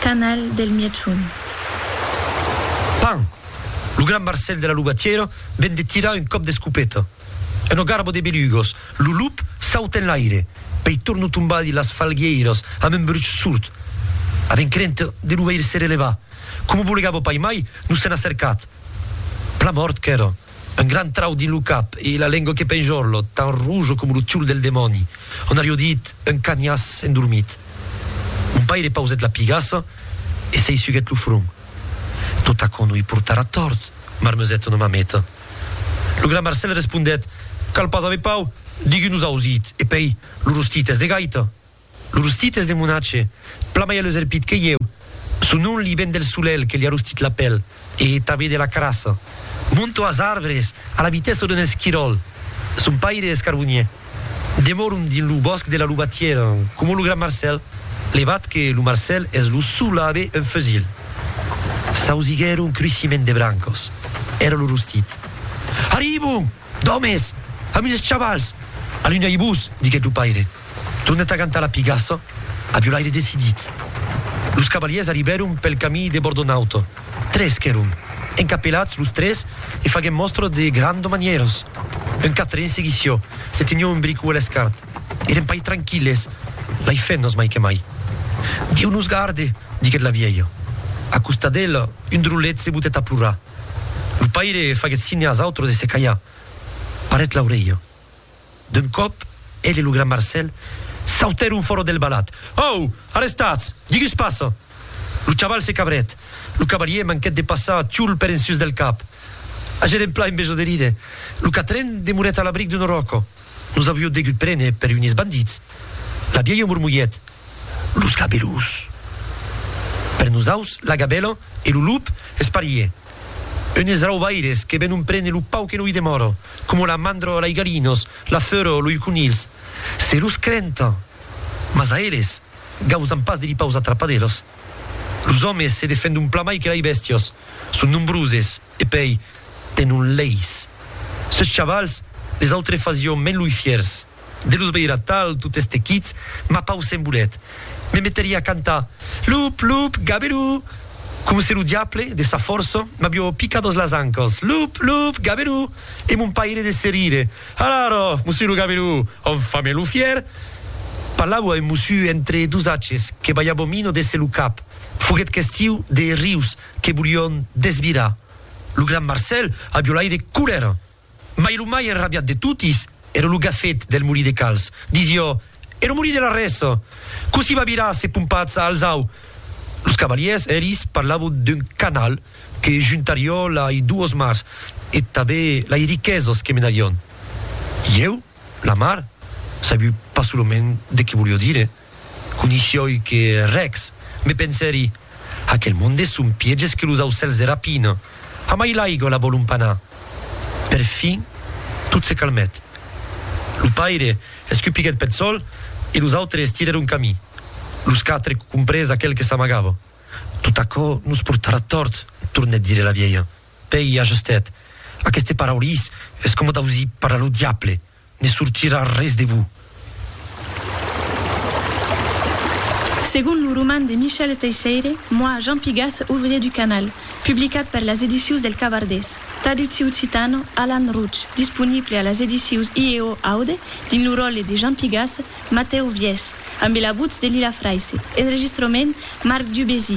Canal del Mièchon. Pan! Lo gran Marcèl de la Lubatièra ven de tirar un còp d'escopeta. Una garba de belugos, lo lup sauta enlaire, pei torna tombar dins las falguièiras amb un bruch surt. Avèm crenta de lo veire se relevar. Coma bolegava paimai, nos sèn acercat. Plan mòrt qu'èra. Un gran trau dins lo cap e la lengua que penjorlo, tan rojo coma lo tiol del demòni. On arió dit, un canhàs endormit. Mon paire pausèt la pigassa e se hisuguèt lo front. Tot aquò no i portarà tòrt, marmesèt una mameta. Lo gran Marcèl respondèt, Cal pas aver pau, digues-nos ausit, e pèi, lo rostit es de gaita. Lo rostit es de monatge, plan mai aleserpit que ieu, son nom li ven del solelh que li a rostit la pèl e tanben de la carassa. Monto as arbres a la vitessa d'un esquiròl. Son paire es carbonier. Demòron dins lo bòsc de la Lubatièra, coma lo gran Marcèl, levat que lo Marcèl es lo sol a aver un fusil. S'ausiguèron cruissiment de brancas. Èra lo rostit. Arribon! D'òmes! Amunt es chavals! Alunhai-vos, diguèt lo paire, tornat a gantar la pigassa a violaire decidit. Los cavalièrs arribèron pel camí de Bordonaut. Tres qu'èron, encapelats los tres e faguèm mòstra de granda manièras. Un quatren seguissió, se tenió un bricu a l'escart. Èrem pas tranquilles, lai fennas mai que mai. Dieu nos garde! diguèt la vièlha. A costat d'ela, un drolet se botèt a plorar. Lo paire faguèt signe als autres de se calhar. Parèt l'aurelha. D'un còp, el e lo gran Marcèl sautèron fòra del balat. Au! Arrestatz! Digus passa! Lo chaval se cabrèt. Lo cavalier manquèt de passar Tioul per en sus del cap. Agèren plan en besonh de rire. Lo quatren demorèt a l'abric d'una ròca. Nos avió degut prene per unes bandits, la vièlha mormolhèt, los gabelus! Per nosaus, la gabèla e lo lup es parier, unes raubaires que venon prene lo pau que no i demòra, coma la mandra a lei galinas, la feura a lei conilhs, se los crenta! Mas a eles, gausan pas de li paus atrapadelas. Los òmes se defendon plan mai que lei bèstias, son nombroses. E pei, te non leis. Seus chavals, les autres fasión meluifiers, de los veirar tal, tot estequits, ma pau se'n volet. Me meteria a cantar, Lup, lup, gaberú! Coma se lo diable, de sa fòrça, m'avió picat dens las ancas, Lup, lup, gaberú! E mon paire de se rire, Alara, mossu lo gaberú! Enfin melufier! Parlavo a un mossu entre dos aches, que balhava mina de se lo cap. Foguet questiu de rius. que volion desvirar lo gran Marcèl a violaire colèra, mai lo mai enrabiat de totis èra lo gafet del molí de Cals, disió, e lo molí de Larrès, cossí va virar se pompatz a Alzau? Los cavalièrs eris parlavon d'un canal que juntarió lai duos mars e tabe lai riquesas que menarion. Ieu, la mar, sabiu pas solament de que volió dire. Conishioi que rex, me pensèri, aquel monde son pièges que los aucèls de rapina. Amai l'aiga la vòlon pas anar. Per fin, tot se calmèt. Lo paire escupiguèt peth sòl e los autres estirèron camí. Los quatre comprés aquel que s'amagava. Tot aquò nos portarà tòrt, tornèt dire la vielha. Pèi ajustèt, Aqueste paraulís es coma d'ausir parlar lo diable. Ne sortirà res de bon. Segon lo roman de Michel Teisseire, Moi, Jean Pigas, ouvrier du canal, publicat per las edicius del Cabardés, traducti occitan, Alan Roche, disponible a las edicius IEO Aude, dins lo ròtle de Jean Pigas, Matèu Viès, ambe la votz de Lila Fraisse, enregistrament, Marc Dubésy,